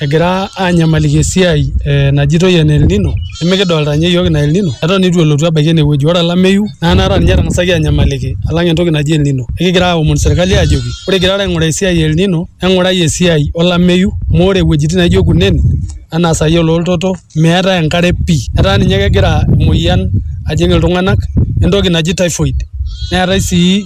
egira anyamaliki esiai najitoi ene El nino nimikidolta ninye iyiook ina El nino eton itu elotu abaiki enewueji ore olameyu naa anaata ninye etang'asaki anyamaliki alang entoki naji El nino ekigira aomon sirkali ajoki ore igirara aing'uraa esiai e El nino eng'urai esiai olameyu amu ore iwuejitin naijo kunen anaa sai ololtoto meetae enkare pii etaa ninye kegira emoyian ajing iltung'anak entoki naji typhoid neetae sii.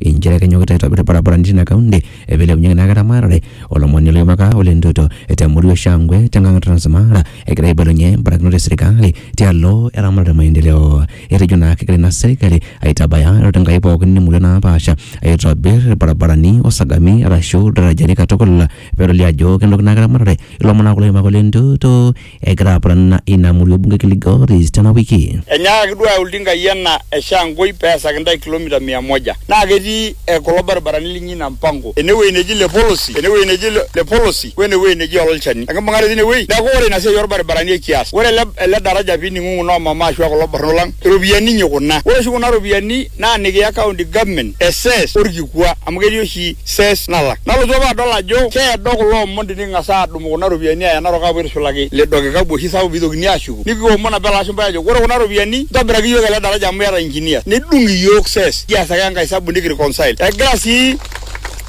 inchere kenyokita aitobir ilbarabarani tina kaunti peilepunyeki naa ake eramatare olomoni loipaka Ole Ntutu te murua e Shangwe te nkang e Trans Mara egira aibalunye mbarakinot e serikali tialo eramatare o maendeleo. Etejo naa kegira ina serikali aitabaya iroruat Enkai pooki imurua naapasha aitobir ilbarabarani o sagami arashu ildarajani katukul pedoli ajo kenoki naa ake eramatare ilo mona kulo oipaka Ole Ntutu egira apurana ina murua bunge Kilgoris tena wiki. Enyaakaki duo ayau iltinkai ena e Shangoi pee easaki intae kilomita mia moja naa ketii kulo baribarani linyi ina mpango ene wueji neji Lepolosi, ene wueji neji Lepolosi o ene wueji neji Ololchani. Enkibung'are teine wueji neaku ore ina siai oo lbaribarani ekias. Ore ele daraja pee ining'ung'u noo mama aashu kulo barnot lang, iropiyiani inyi kuna. Ore oshi kuna ropiyiani naa nikiya county government e cess o lkikua amu ketii oshi cess nalak. Nalotu apa adol ajo keedo kulo omon tiniking'as aadung'. Aadumu kuna ropiyiani aaya Narok aapuo aitushulaki lido kikapu oshi sapuk pee eitokini aashuku nikiomon apa ele ashumpai aajoki ore kuna ropiyiani ntobirakii iyiook ele daraja amu iyata engineers nedung iyiook ses kias ake enkae esabu nikireconcile. Egira sii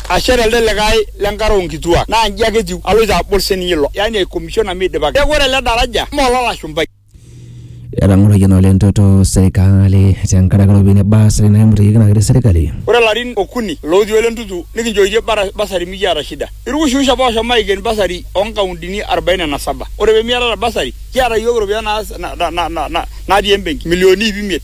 ashet elde likae le nkare oo nkituak naa inji ake etiu aloito abol sii ninye ilo yaani aicommissiona meidipaki. Neeku ore ele daraja mme ololashumpai. Etang'oroyie naa oleng toto serikali tenkaraki iropiyiani e basari naimutiyieki naa ketii serikali. Ore larin okuni lootii ole ntutu nikinchooitie basari mikiata shida. Irwushirwush apa ooshomo aiken basari oo nkauntini arubaine na saba. Ore pee miatata basari kiata iyiook iropiyiani natii embenki milionini iip imiet.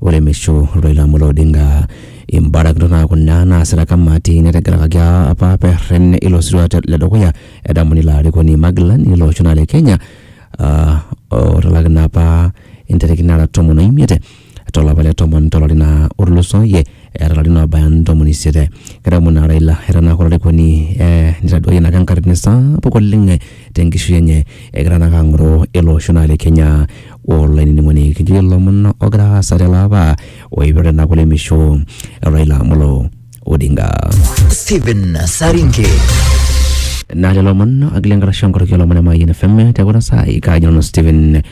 Oremisho Raila Amolo Odinga. Imbarakinot naa kuna naasita kamati nategelakaki apa perren ilo sirua te- le dukuya edamuni ilo arikoni magilani lilo osho naa le Kenya ah, otalaki naa apa intarikini nara tomon oimiet tolapa le tomon tolari naa otulusoyie eeta ilarin obaya ntomoni isiet. Kedamu naa Raila eton ake olarikoni eh, nitaduayie naa ake enkatini sapuk oleng tenkishui enye egira naake ang'oroo ele osho naa le Kenya. olainining'oni kijo ilomon ogira aasa tele apa oipirta ina kulemisho e Raila Amolo Odinga. Stephen Saringe. Naa lelo omon agila enkarasha onkoroki olomon e Mayian FM te kuna saai kaaji nanu Stephen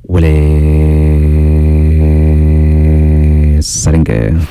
Wele Saringe.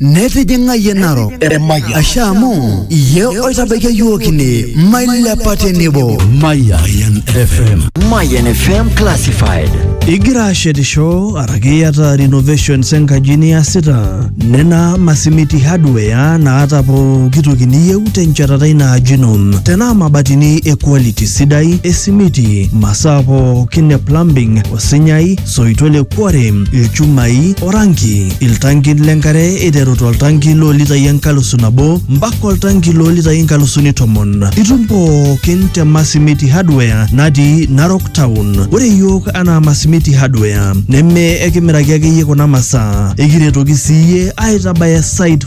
netijing'a yie narok asha amu iye oitabaikia yiook ine mailepa tenebo Mayan FM. Mayan FM Classified. Igira ashetisho araki iyata renovations enkaji niasita nena masimiti hardware naata pooki toki niyieu tenchatata ina aji ino tenaa mabatini e quality sidai esimiti masaa pookin e plumbing osinyai soito le kuare, ilchumai, oranki, iltankin le nkare eiteru toltanki loo litai enkalusu nabo mpaka oltanki loo litai inkalusuni tomon. Itum pookin te Masimiti Hardware natii Narok Town. Ore iyiook anaa Masimiti Hardware neme ekimiraki ake iyie kuna masaa, ekiretoki sii iyie aitabaya site